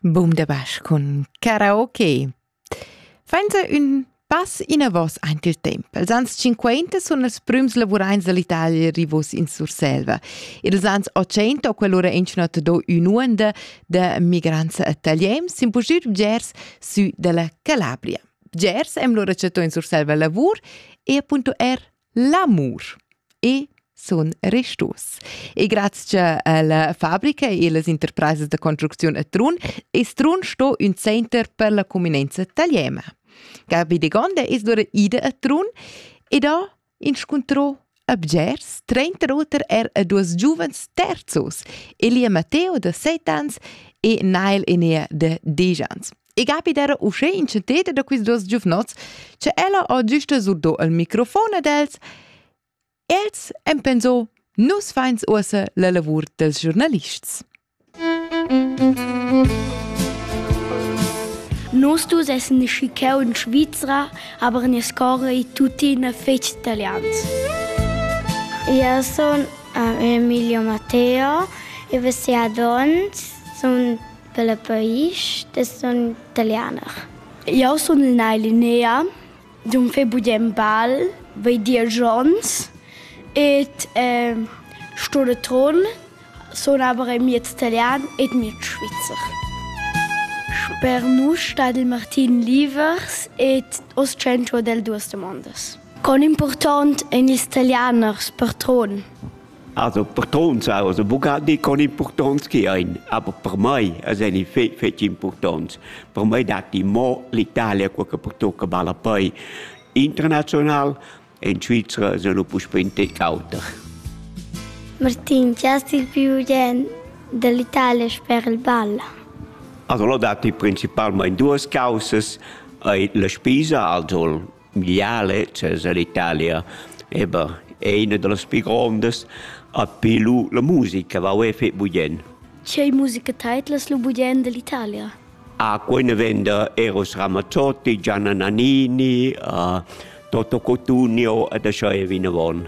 Boom der Basch cun Karaoke. Fainza ün pass inavos aint il temp. Els ans 50 sun els prüms lavuraints dall'Italia rivos in Surselva. Ils ans 80 ho quell'ura inchunat do ün'uonda da migrants a Taliem s'impusir bgers sü dalla Calabria. Bgers emlo recetto in Surselva lavur e appunto er L'amur e sun restos. E grazia alla fabrica e las interpresas da construcziun a Trun es Trun sto ün center per la cuminenza italiana. Gabi de Gonda es dura ida a Trun ed ha inscuntrò a Bgers trenta oter er a duos giuvens terzos, Elia Matteo da 7 ans e Nail Enea da 10 ans. e capiter uschè in ceteda da quist duos giuvnots che ella ho giusta surdo il microfon ad els. Els han pensò, nus fains uossa la lavur dels giornalists. Nos dus essen schicheu in Svizra, aber ne scorre tuttina fetg italians. Io sono Emilio Matteo e vos adonts sono Pella paisch da sun talianer. Jau sun Nay Linea, d'um fai budem bal, vai dir Jons et eh, sto da Tron, sun aber ein miez Italian et miez Schweizer. Per nus stat il Martin Livers et os centro del duas demandas. Con important ein ils Italianers per Tron? Also purtonts also Bugatti con impurtonts chi ein, aber per mei eseni fe fetg impurtonts. Per mei datti mo l'Italia quel che pertucca malapei internazional, in Svizra senu puspé in tec auter. Martin, chi hast il più bien dell'Italia sper il ball? Also lo datti principalmente duas causas, la spesa, also Miale, chez ell'Italia, eber è ina da las pi grondas, api lu la musica va uê fetg bugien. Tgei musica teidlas lu bugien dell'Italia? Ah, quei ne venda Eros Ramazzotti, Gianna Nannini, uh, Toto Cotugno ed ascha è vinavon.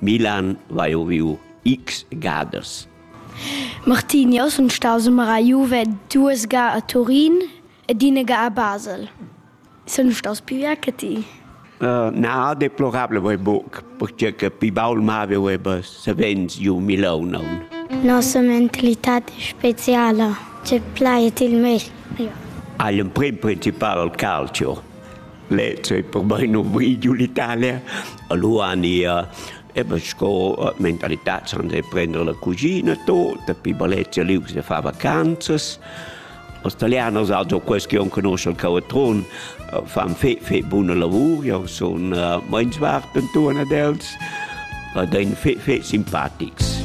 Milan va eu viu x gadas. Martinio sun staus mara Juve duas ga a Turin ed ina ga a Basel. Sun staus più ja che ti? Uh, na, deplorable vai buc, perché che pi baul mave veva savens giu Milaun. Nossa mentalità è speciale, c'è plaet il meglio. Hai un prim principal al calcio. le cei per bein nu vi giu l'Italia, allura ania Eben sco mentalità san de prendere la cugina tota, pi Balezia liu se fa vacanzas. Als italianos also questo che non conosce il Cavatron, eh, fan fe, fe buona lavoro, io sono uh, meins warten tu ad els, ed ein fe, fe simpatics.